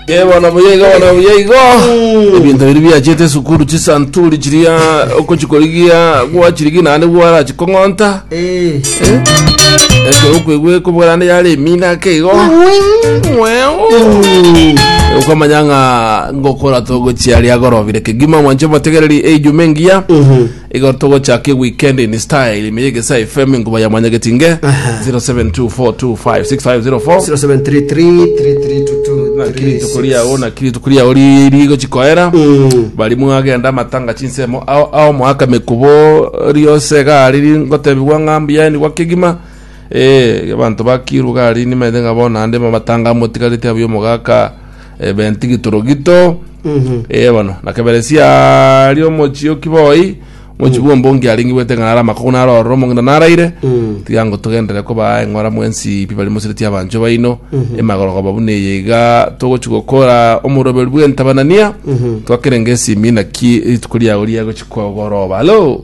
Eh, bono buya igo bono buya igo ebinto biri biachete esukuru chisanturi chiria okochikorigia gwachirigia naende gwarachikong'onta Eh, ekero okwegwe kobwarande yare emina ake igo okamanya ng'a ngokora togochia riagorobire kegima mwanche motegereri eijuma engiya Igo togochaka eweekend in style ime y'egesae FM enkuba ya mwanyagetinge 0724256504 0733322336. naki rituko riao naki rituko riao ri- rigochi koera Mm. bari mwagenda amatanga chinsemo ao ao moaka mekubo riose gari ringotebigwa ng'a mbuya enigwa kegima eh abanto bakirwa gari nimaete ng'a bono ande mamatanga amotigarete abuya omogaka ebenti gitoro gito ee bono na keberesia ari omochie okiboi omochie bwa ombongi aringi bwete ng'a nare amakogu nare ororo omong'ina naraire tiga ngotogenderere kobaa eng'ora mwensi pi bari mosireti abanchwa baino emagorogoba buna eye iga togochi gokora omoroberu bw'entabanania twakere ngesimi naki rituko riago riagochi kogoroba alo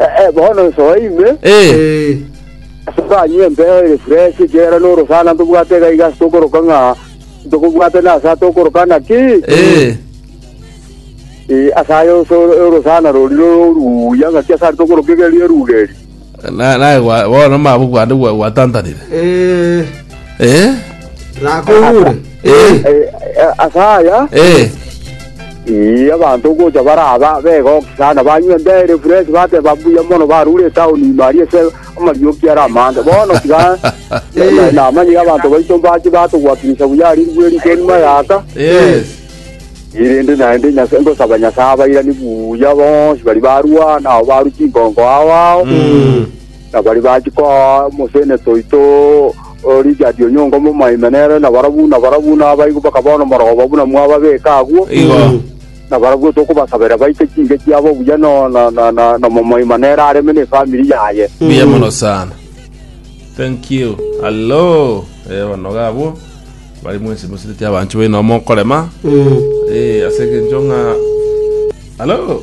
Eh, bono nsoe ime, Eh, asoke anywe empeo ere fresh, ekiagera norosana ntobwate iga iga ase tokoroka ng'a ntokobwate nase atokoroka naki eh, Eh, ase aye ose orosana rori roruya ng'aki ase ari tokoroka iga erio eruga eri na- naye gwa- bono mabu gwande gwa- gwatantanire Eh, Eh? rakogure. Eh, Eh, eh, ase aya eh, ii, abanto ogocha baraba begoki sana banywa embere fresh bateba mbuya mono barure etaoni ime aria ase amarioki ara amande bono tiga na- namanyire abanto baito mbache batogwakinyisa buya ari ribwe rito nima yaka yes. irinde naende Nyasa- ngosaba nyasaye abairani buya bonsi bari barwana ao baru chinkonko ao ao Na baria bachia koa omosenete oito o Richard Onyonga omomaime nere nabarabwo nabarabwo nabaigwa bakaba nomorogoba buna mwababeka agwo. Igo. Na barabwo tokobasaberia baite chinke chiabo buya no na na na nomomaima nere areme ne family yaye. Mbuya mono sana. Thank you. Hallo. Eh, banoga abwo. Bari mwensi mosireti abanchwa enomo okorema. Eh, ase egencho ng'a Hallo.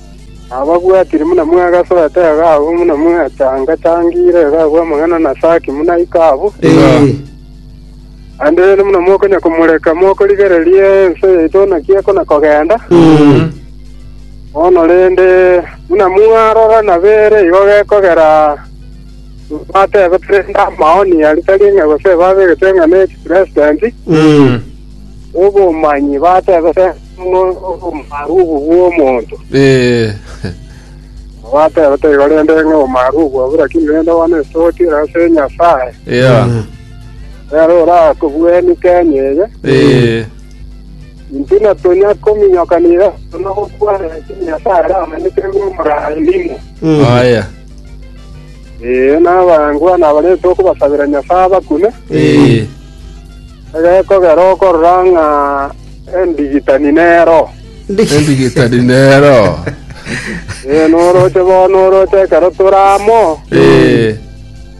Nababwatire buna mwagasoa taiga abwo, buna mwatanga-tangire iga abwo amang'ana na Saki buna iko abwo. Naende rende buna mokonya komoreka mokorigereria ense yaito naki ekona kogenda. Bono rende, buna mwarora nabere igo gekogera batebete rende amaoni aria tari ng'a gose babegete ng'a ne chipresidenti, obomanyi batebete. Ng'a obomaarughu bw'omonto Ee, obateba toigo, rende ng'a obomaarughu obwo, lakini rende bono esotire ase Nyasae, ya, nere orakobweni Kenya eye. ee, Intwe natonya kominyoka niga tonya gokwana, lakini Nyasae aramanyete ng'a omoraai nimo. aya, Ee, nabangwana baria tokobasabera Nyasae abakune, ee, Egekogera okorora ng'a endigitani nero. Endigitani nero. Ee, noroche bono, oroche ekero tore amo,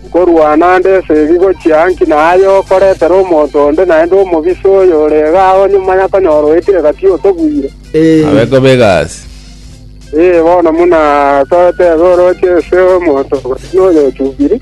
nkorwana nde esegi gochia inki na aye okoretera omonto onde naende omobisa oyo ore iga ao nyuma ya konyora oetire gati otogwire. Abe kobe egasi. Ee, bono buna totebe oroche ase omonto gati noyochubiri.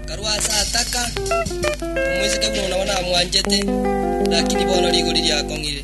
Karue ase ataka, omoiseke buna nabwo namwanchete, lakini bono rigori riakong'ire.